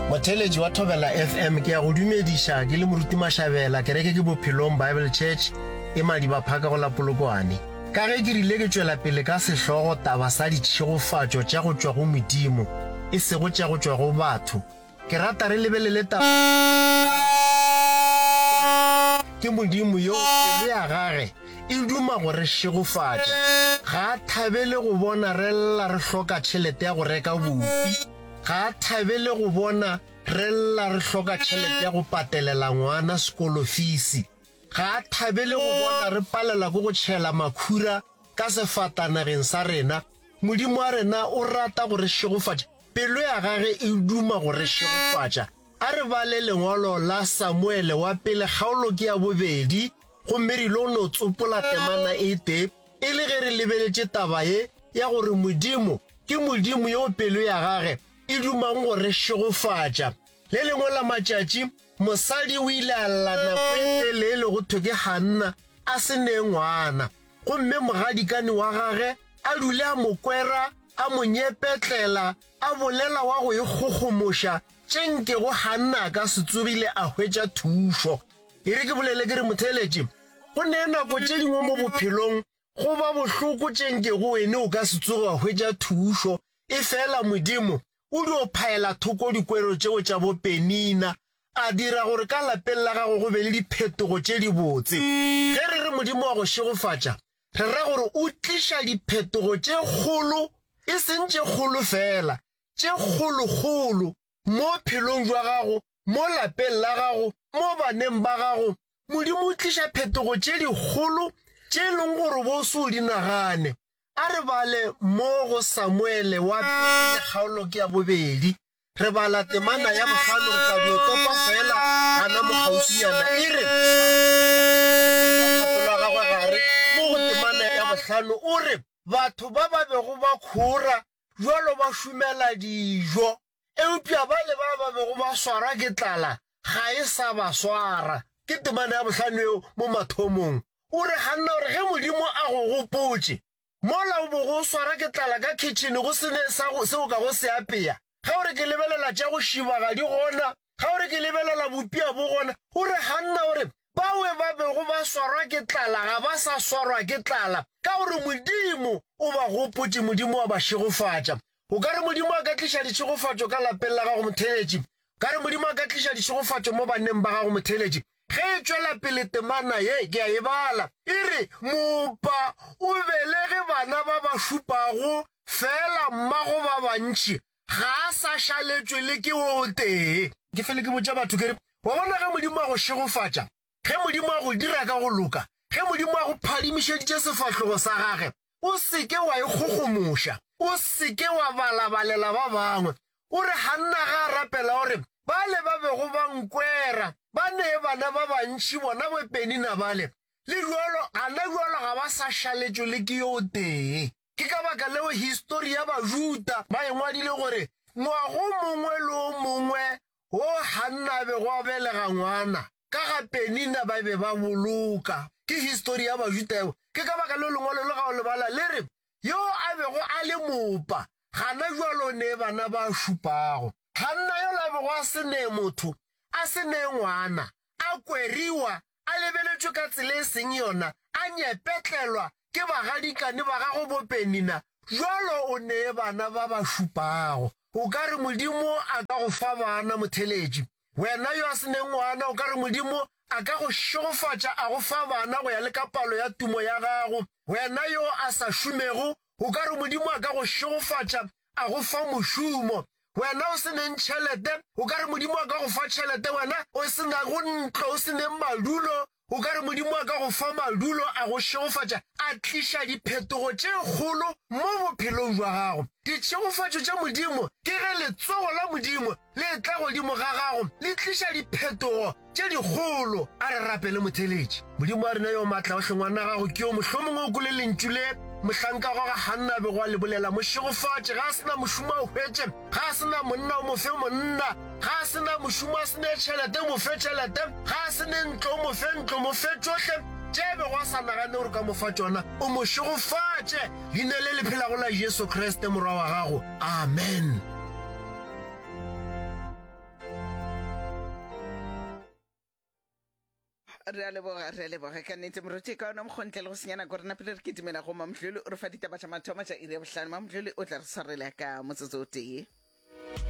motheletši wa thobela fm ke ya go dumediša ke le moruti mašabela kereke ke bophelong bible church e madibaphaka go la polokwane ka ge ke rile ke tšwela pele ka sehlogo taba sa ditšhegofatšo tša go tšwa go modimo e sego tša go tšwa go batho ke rata re lebelele taba ke modimo yo pelo ya gage e duma go re šegofatša. Ga a thabele go bona re lla re hloka tšhelete ya go reka bupi. Ga a thabele go bona re lla re hloka tšhelete ya go patelela ngwana sekolofisi. Ga a thabele go bona re palelwa ke go tšhela makhura ka sefatanageng sa rena. Modimo wa rena o rata go re šegofatša, pelo ya gage e duma go re šegofatša. A re bale lengwalo la Samuele wa Pele kgaolo ke ya bobedi. Gomme re il'o no tsopola temana e tee, e le ge re lebeletše taba ye ya gore Modimo ke Modimo yo pelo ya Gage e dumang go re šegofatša. Le lengwe la matšatši, mosadi o ile a lla nako e telele go thwe ke Hanna a se nee ngwana, gomme mogadikane wa gage a dule a mo kwera, a mo nyepetlela, a bolela wa go ikgogomoša tše nkego Hanna a ka se tsogile a hwetša thušo. E re ke bolele ke re motheeletši, go ne nako tše dingwe mo bophelong go ba bohloko tše nkego wene o ka se tsoge wa hwetša thušo, e fela Modimo o dio phaela thoko dikwero tšeo tša bopenina, a dira gore ka lapeng la gago go be le diphetogo tše dibotse. Ge re re Modimo wa go šegofatša, re ra gore o tliša diphetogo tše kgolo, e seng tše kgolo fela, tše kgolokgolo mo phelong jwa gago mo lapeng la gago, mo baneng ba gago, Modimo o tliša phetogo tše dikgolo tše e leng gore bo se o di nagane. A re bale mo go Samuele wa Pele kgaolo ke ya bobedi. Re bala temana ya bohlano, re tla no topa feela gana mo kgauswinyana. E re, Pelo ya gagwe gare mo go temana ya bohlano, o re, Batho ba ba bego ba kgora bjalo ba šumela dijo. eupša bale ba ba bego ba swarwa ke tlala ga e sa ba swara. Ke temana ya bohlano yeo mo mathomong. O re ganna gore ge Modimo a go gopotše mola o bogo o swarwa ke tlala ka khitšhene go se ne se o ka go se apea, ga o re ke lebelela tša go šiba ga di gona, ga o re ke lebelela bopia bo gona, o re ganna gore Bawe ba bego ba swarwa ke tlala ga ba sa swarwa ke tlala ka gore Modimo o ba gopotše, Modimo wa ba šegofatša. O ka re Modimo a ka tliša ditšhegofatšo ka lapeng la gago motheeletši? O ka re Modimo a ka tliša ditšhegofatšo mo banneng ba gago motheeletši? Ge e tšwela pele temana ye, ke a e bala, e re, Moopa o belege bana ba ba šupago feela mmago ba bantši, ga a sa šaletšwe le ke wo o tee. Ke fele ke botša batho ke re, Wa bona ge Modimo a go šegofatša, ge Modimo a go dira ka go loka, ge Modimo a go phadimišeditše sefahlogo sa gage, o se ke wa ikgogomoša, o se ke wa balabalela ba bangwe. O re Hanna ga a rapela, o re, Bale ba bego ba nkwera ba nee bana ba bantši, bona bo Penina bale, le bjalo, gana bjalo ga ba sa šaletšwe le ke yo o tee. Ke ka baka leo histori ya Bajuda ba e ngwadile gore, Ngwago mongwe le o mongwe wo Hanna a bego a belega ngwana, ka ga Penina ba be ba boloka. Ke histori ya Bajuda yeo. Ke ka baka leo lengwalo le ga o le bala le re, Yo a bego a le mopa, gana jwale o nee bana ba šupago. Hanna yola a bego a se nee motho, a se nee ngwana, a kweriwa a lebeletšwe ka tsela e seng yona, a nyepetlelwa ke bagadikane ba gagwe bopenina, bjalo o nee bana ba ba šupago. O ka re Modimo a ka go fa bana, motheletši? Wena yo a se neng ngwana, o ka re Modimo a ka go šegofatša a go fa bana go ya le ka palo ya tumo ya gago? Wena yo a sa šomego, O ka re Modimo a ka go šegofatša, a go fa mošomo, wena o se neng tšhelete. O ka re Modimo a ka go fa tšhelete, wena o se nago ntlo, o se neng madulo. O ka re Modimo a ka go fa madulo, a go šegofatša, a tliša diphetogo tše kgolo mo bophelong jwa gago. Ditšhegofatšo tša Modimo ke ge letsogo la Modimo le tla godimo ga gago le tliša diphetogo tše dikgolo. A re rapele motheletši. Modimo wa rena yo matla, o hle ngwana gago ke yo mohlomongwe o kole lentšu le mohlanka gwa ga Hanna a bego a le bolela, mo šegofatše, ga a se na mošomo a o hwetše, ga a se na monna o mo fe monna, ga a se na mošomo a se ne tšhelete o mo fe tšhelete, ga a se ne ntlo o mo fe ntlo, mo fe tšohle tše a bego a sa nagane gore ka mo fa tšona, o mo šegofatše. Leina le le phelago la Jesu Kriste, Morwa wa gago. Amen. re a leboga re a leboga ka nnete moruti ka ona mokgontle le go senyana gore na pele re ke dumela go mamdlole o re fa ditaba tša mathomo tša iri ya bohlano mamdlole o tla re tshwarela ka motsotso o tee